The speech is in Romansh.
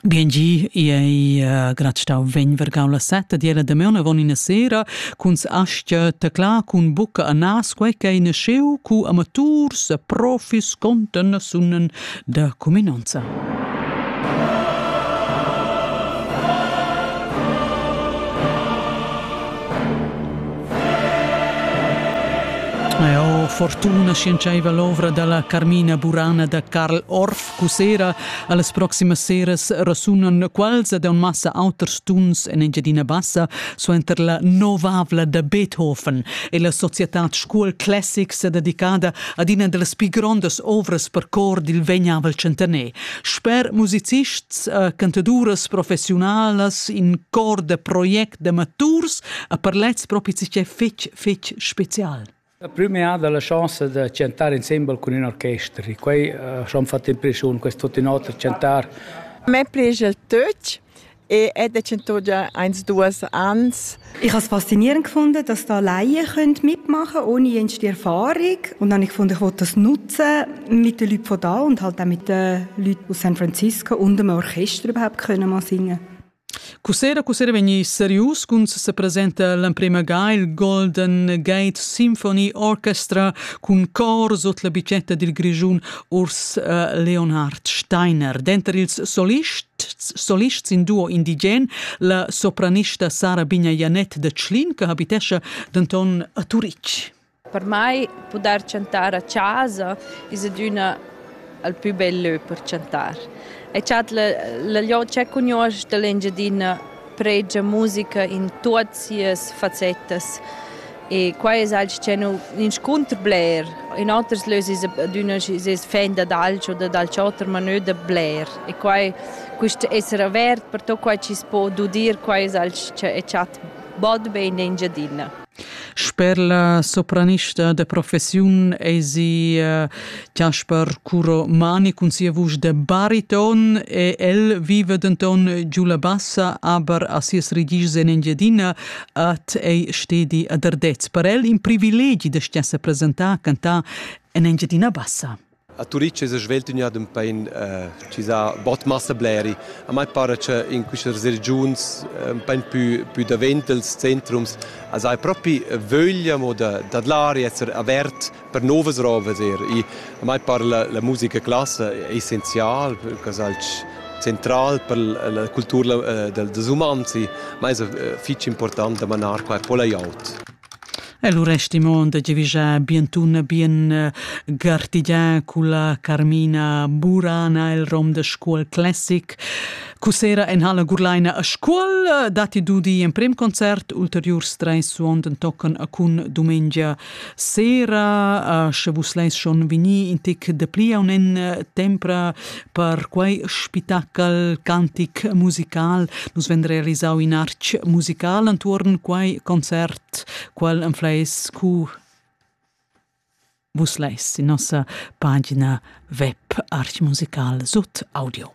Gengi ei uh, grad stau vegn vergau la setta di la damaun avon ina sera cun astgia tecla cun bucca a nas quei che in scheu cu amaturs e profis conten sunnen da cuminanza. Eau fortuna sciendschaiva l'ovra da la Carmina Burana da Karl Orff cussera. A las proximas seras resunan quals ed massa auters tuns en Engiadina Bassa suenter la novavla da Beethoven e la societad Scuol Classics dedicada ad ina da las pi grondas ovras per cor dil vegnavel tschentaner. Sper musicists, eh, cantaduras professiunalas, in cor da projects d'amaturs a per lez propi che fetg fetg special. La prima è la chance di chantare insieme con un orchestra. Quei uh, ci hanno fatto impressione, questo in otro chantar. Me prigel tutto e è de cento già eins duas ans. Ich habe es faszinierend gefunden, dass da Laien mitmachen können, ohne jenste Erfahrung. Und dann habe ich gefunden, ich wollte das nutzen mit den Leuten von da und halt auch mit den Leuten aus San Francisco und dem Orchester überhaupt können mal singen. Cussera cussera vegnir serius cun sepresenta l'emprema ga il Golden Gate Symphony Orchestra cun cor sut la bicetta dil Grischun Urs äh, Leonhard Steiner. Denter ils solists solist sin duo indigen, la sopranista Sara Bigna Janet de Tschlin, che habitescha denton a Turitg. Per mei pudair chantar a chasa es adüna il pü bel lö per chantar. E chat la la jo c'è cugnuosch da l'Engiadina pregia musica in tuot sias fassettas e quai es alch ch'è nu inscunter bler. In oters lös es adüna schi sez fan dad alch o dad alch oter, ma nö da bler. E quai quist esser avert per tuot quai chi's po dudir, quai es alch ch'e chat bod be in Engiadina. Sper la sopranista da professiun eisi eh, Jasper Curo Mani cun sia vusch da bariton e el viva denton giu la bassa, aber a sias regischs en Engiadina at ei stedi a Derdez. Per el in privilegi da stiessa presentar cantar en Engiadina Bassa. A Turitg es svelt ün jad ün pain eh, chi s'ha bod massa bleri. A mai para cha in quistas regiuns ün pain pü, pü davent els centrums as haja propi vöglia mo da, da dlar e esser avert per novas rovas eir. I, a mai para la, la musica classa è essenzial, quas alch central per la cultura eh, dels umans, ma es eh, fich important da manar qua e po la glieud. E lu resti mo da giavischar bien tun e bien eh, gartigià culla Carmina Burana el rom da Scuol Classic. Cussera en Halle Gurlaina a Scuol datti dudi in prim concert ulteriurs treis suonden tocken a cun dumengia sera. Sche vus leis schon vini in tic de pli un en tempra Per quei spitachel cantic musical nus vend realisau in artg musical entuorn quei concert, qual enfleis cu vus leis in nossa pagina web archmusical sut audio.